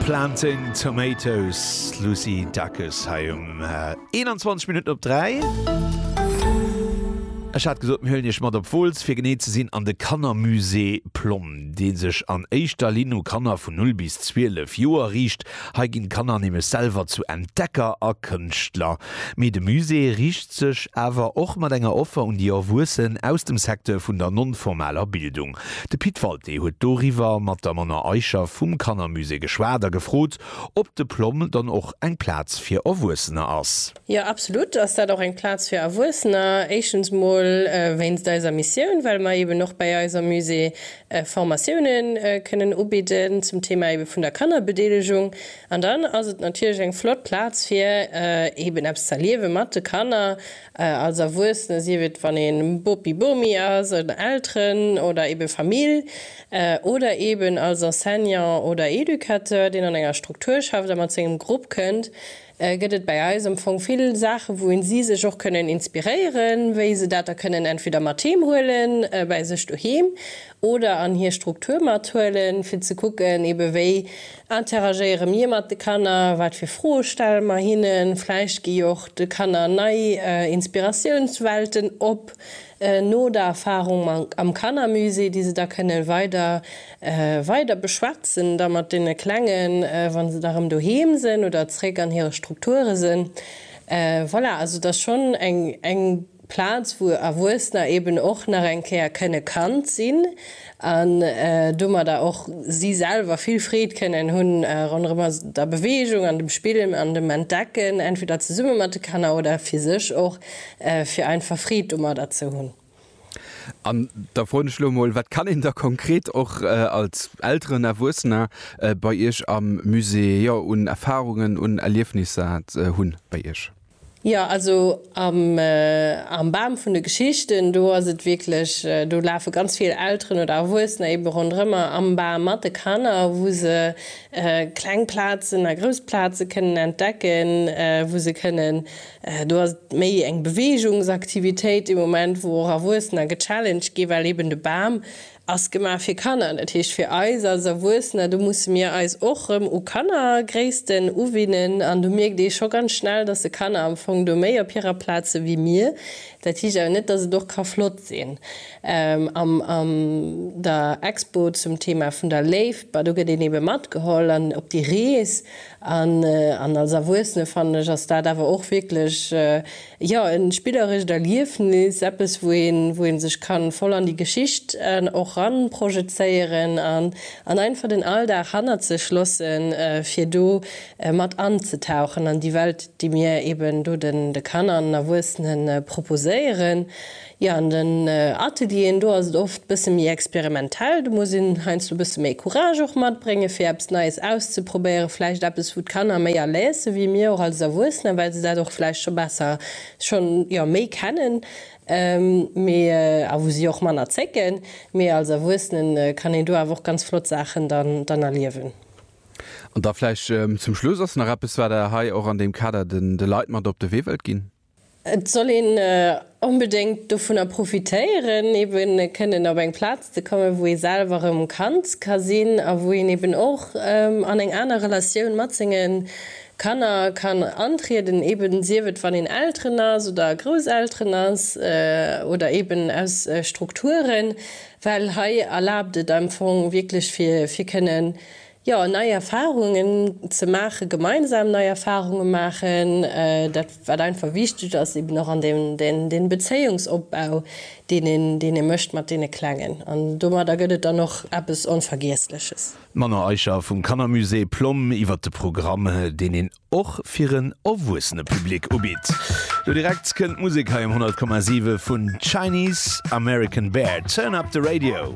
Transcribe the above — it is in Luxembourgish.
Planting Tomatoes, Lucy Dacus hei um 21 Minutten op 3. Ech hat gesot mir hëllen Iech mat op Wooltz fir genee ze sinn an de Kannermusée Plomm, dee sech an éischter Linn u Kanner vun 0 bis 12 Joer riicht. Hei ginn d'Kanner nämlech selwer zu Entdecker a Kënschtler. Mee de Musée riicht sech awer och mat enger Offer un déi Erwuessen aus dem Secteur vun der non-formaler Bildung. De Pit Walté huet doriwwer mat der Mona Eicher vum Kannermusée geschwat a gefrot, ob de PLOMM dann och eng Plaz fir Erwuessener ass. Jo, absolut ass dat och eng Plaz fir Erwuessener. Éischtens mol wéinst eiser Missioun, well mer eben och bäi eis am Musée Formatioune kënnen ubidden zum Thema ebe vun der Kannerbedeelegung. An dann ass et natierlech eng flott Plaz fir eben eppes z'erliewe mat de Kanner. Als Erwuessene, sief et wann ee Bopi, Bomi ass, oder Elteren oder ebe Famill, oder eben als Enseignant oder Educateur, deen an enger Struktur schafft a mat sengem Grupp kënnt, gëtt et bäi eis am Fong vill Saache wou een si sech och kënnen inspiréieren, wéi se dat da kënnen entweder mat heem huelen, bäi sech doheem, oder an hir Struktur mathuelen, fir ze kucken, ebe wéi Interagéiere mir mat de Kanner? Wat fir Froe stelle mer hinnen? Vläicht gi jo och de Kanner nei Inspiratiounswelten op no der Erfarung am Kannermusée, déi se da kënnen weider weider beschwätzen da mat deene Klengen, wann se da erëm doheem sinn oder zeréck an hire Strukture sinn. Voilà, also et ass schonn eng eng. Plaz wou Erwuessener eben och nach eng Kéier kënne Kand sinn an domadder och si selwer vill Freed kënnen hu ronderëm der Beweegung an dem Spillen an dem Entdecken, entweder zesumme mat de Kanner oder fir sech och, fir einfach Freed domadder ze hunn. An da froen ech elo emol, Wat kann een da konkret och als Elteren, Erwuessener bei Iech am Musée, jo un Erfarungen, un Erliefnisser hunn bei Iech? Jo, also am Bam vun de Geschichten, do ass et wierklech, do lafe ganz vill Elteren oder Erwuessener eebe ronderëmmer am Bam mat de Kanner, wou se kleng Plazen a grouss Plaze kënnen entdecken, wou se kënnen, do ass et méi eng Beweegungsaktivitéit dee Moment, wou och Erwuessener gechallenged ginn, well eeben de Bam Ass gemaach fir Kanner, dat heescht fir eis als Erwuessener. Do musse mir eis och erëm u Kannergréissten uwinnen an do mierkt ee scho ganz schnell, dass de Kanner am Fong do méi op hirer Plaz si wéi mir. Dat heescht awer net, dass et och ka flott sinn am an der Expo zum Thema vun der Léift. Bah do gëtt een ebe matgeholl an op déi Rees an als Erwuessene fannen ech ass dat awer och wierklech Jo, e spillerescht Erliefnis, eppes wou een wou een sech kann voll an déi Geschicht och ran projezéieren an an einfach den Alldag hannert sech lossen fir do mat an ze tauchen an déi Welt déi mir eben do den de Kanner an den Erwuessenen proposéieren. Jo, an den Atelieren, do ass et oft bësse méi experimentell. Do muss een heiansdo bësse méi Courage och matbréngen, fir eppes Neies auszeprobéieren. Vläicht eppes, wou d'Kanner méi à l'aise si wéi mir och als Erwuessener, well se dat och vläicht scho besser, schonn, jo, méi kennen, mee, a wou si och manner zécken. Mee als Erwuessenen kann een do awer och ganz flott Saachen dann, dann erliewen. An da vläicht zum Schluss, Ass nach eppes, wat Der hei och an deem Kader de Leit mat op de Wee wëllt ginn? Et soll een onbedéngt dovunner profitéieren, eben kënnen op eng Plaz ze kommen, wou ee selwer erëm Kand ka sinn a wou een eben och an eng aner Relatioun mat senge Kanner kann antrieden, eben sief et, wann een Elteren ass oder Grousselteren ass oder eben aus Strukturen, well hei erlaabt et am Fong wierklech fir kënnen Jo, nei Erfahrungen ze maachen, gemeinsam nei Erfahrungen maachen, dat wat einfach wichteg ass, eben och an dee Bezéiungsopbau, deen ee mécht mat deene Klengen. An domadder gëtt et dann och eppes Onvergiessleches. D'Manon Eicher vum Kannermusée Plomm iwwert de Programm, deen een och fir en erwuessene Public ubitt. Lo direkt kënnt d'Musek hei um 100,7 vun Chinese American Bear. Turn up the radio!